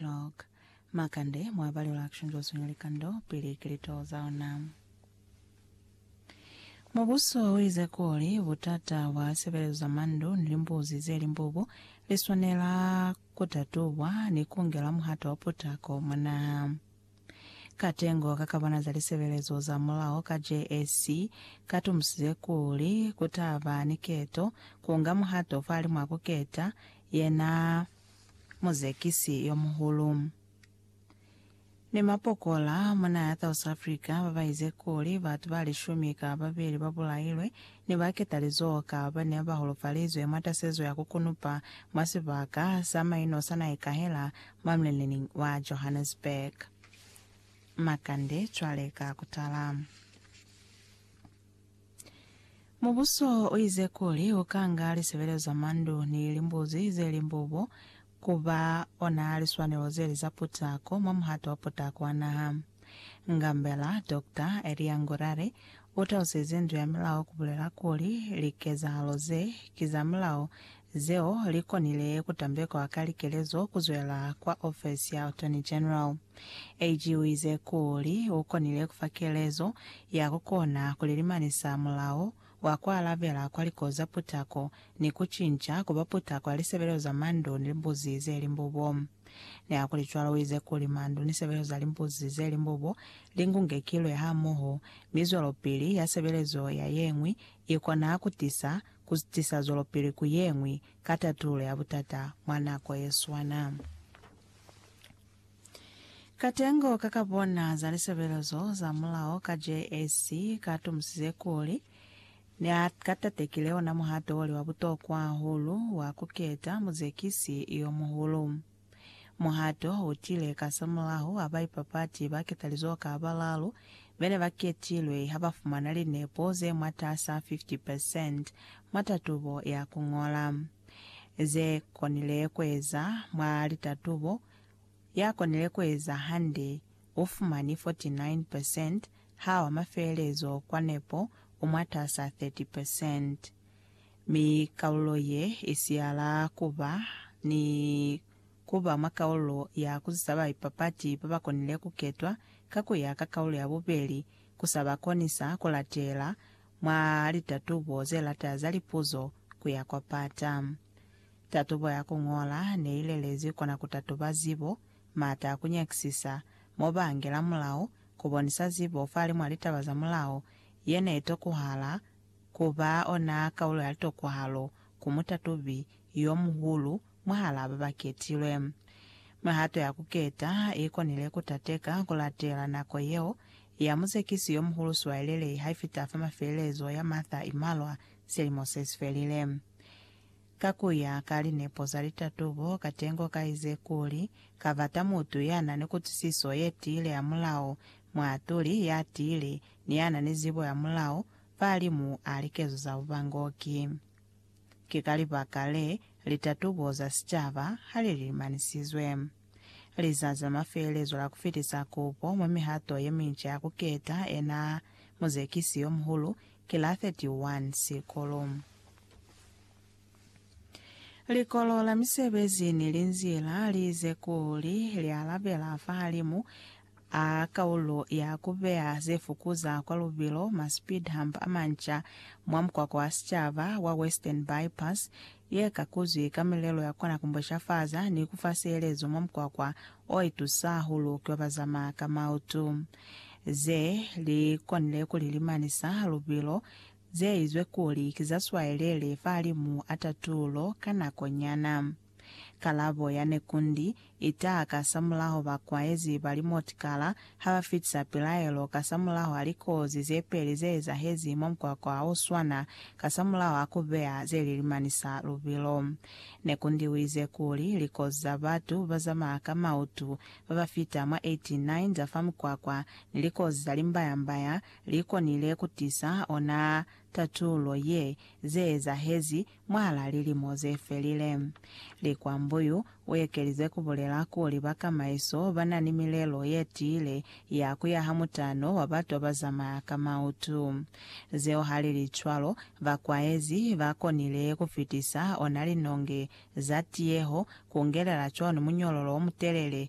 Log. Makande mwa ba lula kushunzwa swinya likando pili ki litoho za ona. Mubuso uize kuli butata bwa sebelezo za mandu ni limbuzi ze limbubu liswanela kutatubwa ni kungelwa muhato wa putako mwa naha. Katengo ka kabana za lisebelezo za mulao ka JSC katumusize kuli kutaba ni keto, kunga muhato fahalimwaa kuketa, yena muzekisi yo muhulu. Ni mapokola mwa naha ya South Africa ba ba ize kuli batu ba lishumi ka ba beli ba bulailwe ne ba ketalizoho ka ba ne ba holofalizwe mwa tasezo ya ku kunupa mwa sibaka sa maino sa Naekahela mwa mulenening wa Johannesburg. Makande cwale ka ku tala. Mubuso uize kuli ukanga lisebelezo za mandu ni limbuzi zeli mbubo kuba ona liswanelo zeli za putako mwa muhato wa putako wa naha. Ngambela, Doctor, Elia Ngurare utalusize ndu ya milao kubulela kuli likezahalo ze ki za milao Zeo li konile ku tambekwa ka likelezo ku zwela kwa ofesi ya Attorney General. AG u ize kuli u konile ku fa kelezo ya ku kona ku lilimanisa mulao wa ku alabela kwa likozi za putako ni ku cinca ku ba putako ya lisebelezo za mandu ni limbuzi ze limbubo. Nihakulicwalo, u ize kuli mandu ni sebelezo za limbuzi ze limbubo li ngungekilwe hamoho, mi zwelopili ya sebelezo ya ye ñwi i kona ku tisa ku tisa zwelopili ku ye ñwi ka tatululo ya butata mwa nako ye swana. Katengo ka ka bona za lisebelezo za mulao ka JAC ka tomusize kuli ne a ka tatekile ona muhato o li wa butokwa hahulu wa ku keta muzekisi yo muhulu. Muhato u tile kasamulaho ha baipapati ba ketalizoho ka balalu be ne ba ketilwe ha ba fumana linepo ze mwatas'a 50 percent mwa tatubo ya ku ñola ze konile ku eza mwa litatubo. Ya konile ku eza hande u fumani 49 percent ha wa mafeelezo kwa nepo u mwatas'a 30 percent. mi kalulo ye i siyala ku ba ni ku ba mwa kalulo ya ku zisa baipapati ba ba konile ku ketwa ka ku ya ka kalulo ya bubeli ku sa ba konisa ku latela mwa litatubo ze lata za lipuzo ku ya kwa pata. Tatubo ya ku ñola ne i lelezi kona ku tatuba zibo, m'ata a ku nyakisisa, mo ba angela mulao, ku bonisa zibo fa limwa litaba za mulao ye ne i tokuhala, Ku ba ona kaulo ya litokwahalo ku mutatubi yo muhulu mwahalaa ba ba ketilwe. Mihato ya ku keta ha i konile ku tateka ku latela nako yeo ya muzekisi yo muhulu siwaelelei ha i fita fa mafelelezo ya Martha i malwa silimo se si felile. Ka ku ya ka linepo za litatubo, katengo ka ize kuli, Ka bata mutu ya na ni kutwisiso ye tiile ya mulao, muatuli ya tiile, ni ya na ni zibo ya mulao, fahalimu a likezo za bubangoki. Ki ka libaka le, litatubo za sicaba ha li limanisizwe. Lizazi la mafelelezo la ku fitisa kupo mwa mihato ye minca ya ku keta ena muzekisi yo muhulu ki la 31 Sikulu. Likolo la misebezi ni linzila li ize kuli li alabela fahalimu a kaulo ya ku beya ze fukuza kwa lubilo ma speed hump a manca mwa mukwakwa wa sicaba wa Western Bypass ye kakuzwi ka milelo ya kona ku mbweshafaza ni ku fa sielezo mwa mukwakwa o itusa hahulu ki wa bazamaya ka mautu. Ze li konile ku li limanisa lubilo zeizwe kuli ki za swaelele fahalimu a tatulo ka nako nyana. Kalabo ya nekundi itaha kasamulaho bakwaezi ba limotikala ha ba fitisa pilaelo kasamulaho a likozi ze peli ze ezahezi mwa mukwakwa ha u swana kasamulaho a ku beya ze li limanisa lubilo. Nekundi uize kuli likozi za batu ba zamaya ka mautu ba ba fita mwa 89 za fa mukwakwa ni likozi za limbayambaya li konile ku tisa ona tatulo ye ze ezahezi mwahal'a lilimo ze felile. Likwambuyu u ekelize ku bulela kuli ba kamaiso ba na ni milelo ye tiile ya ku yaha mutano wa batu ba ba zamaya ka mautu. Zeo ha li li cwalo, ba kwaezi ba konile ku fitisa ona linonge za tiyeho ku ngelela cwalo ni munyololo o mutelele